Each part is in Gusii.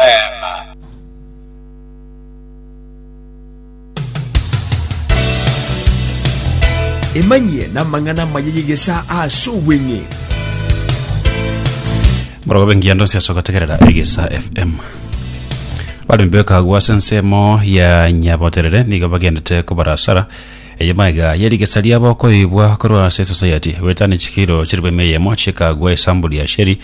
Amen. Emanyie namang'ana amaya y'egesaa ase obweng'e. morogobe ngiya ndonsi ase ogotegerera egesa fm baremi bekagwa ase ensemo ya nyaboterere nigo bagendete kobarasara eye maiga ye rigesa riabo koibwa korwa ase society goetani chikiro chiribeme eyemo chikagwa esambuli ya sheri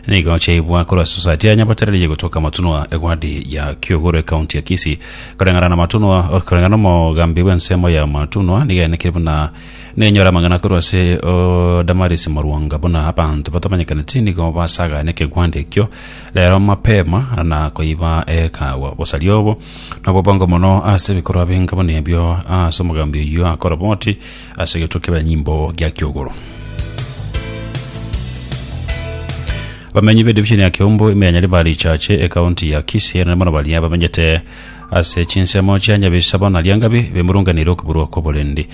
Nigo chiaibwa korwa Society ya Nyabatereria egotoka Matunwa, egwadi ya Kiuguru, ekaunti ya Kisii. Koreng'ana na Matunwa, koreng'ana n'omogambi bw'ensemo ya Matunwa, nigo yaenekire buna nenyore amang'ana korwa ase o, Damaris Morwonga buna abanto batamanyekaneti nigo basagaane ekegwandi ekio rero mapema na koiba ekaagwa. Obosaria obo nobobongo mono ase ebikorwa binga buna ebio ase omogambi oyio akoroboti ase egetwe kebanyimbo gia kiogoro. bamenyi b'edivision ya Kiombo ime ya Nyaribari Chache ekaunti ya Kisii na mono baria bamenyete ase chinsemo chia Nyabisabo na Liangabi bemurunganire okuburwa kw'oborendi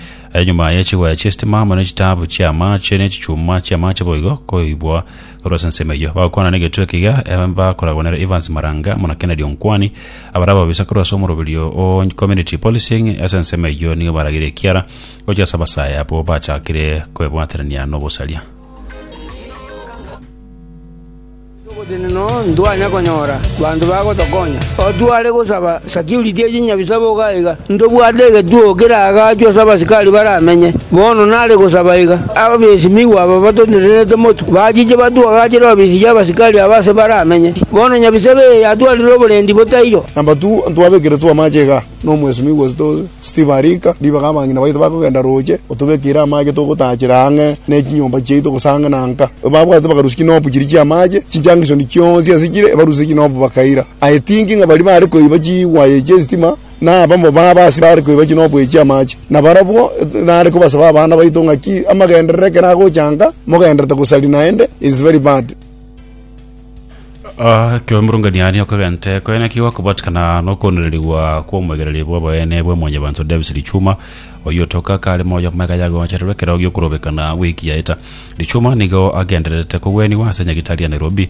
nyuma ya chigoya chi'estima amo ne chitaabu chi'amaache ne chichuma chi'amaache boigo koibwa Korwa ase ensemo eyio bagokwana negetwe ekiya, em, bakoragwa nere Evans Maranga muna Kennedy Onkwani, abare ababisa korwa ase omoroberio o Community Policing ase ensemo eyio nigo baragire ekiara gochia ase abasae abwo bachakire kwebwaterania nobosaria. Obotenena oo ntwanya konyora, banto bagotokonya, otware gosaba Security echia nyabisa boka aiga, ntobwate egetuo keraagachwe ase abasikari baramenye. Bono nare gosaba iga, abesimigwa aba batonenerete motwe, bachiche batuagachire ofisi y'abasikari aba ase baramenye. Bono nyabisa ebe yatwarire oborendi botairo. Namba tu, ntwabekeretwe amache iga n'omwesimigwa Steve Arika, ribaga abang'ina baito bakogenda roche, otobekeire amache togotaachera ang'e ne chinyomba chiaito gose ang'e na nka. Babwate bakarusia chinopu chiria chi'amache, chinchangisoni chionsi ase chire, ebarusia chinopu bakaira. I think ng'a baria bare koiba chiwaye chi'esitima nabamo babo ase bare koiba chine oboiyo chi'amache, na barabwo nare kobasaba abana baito ng'aki amagenderero ekero agochanka mogenderete gosaria naende is very bad. Ah, ekiagera omorong'anio aria okagente koe naki gokobatikana nokoondererigwa kw'omoegereri bw'oboene bwa Mwanyabanto Davis Lichuma, oyio otoka kare moyo amagega yagochererwa ekero gi'okorobekana gw'ekiyaeta. Lichuma nigo agendererete kogwenigwa ase Nyagitari ya Nairobi,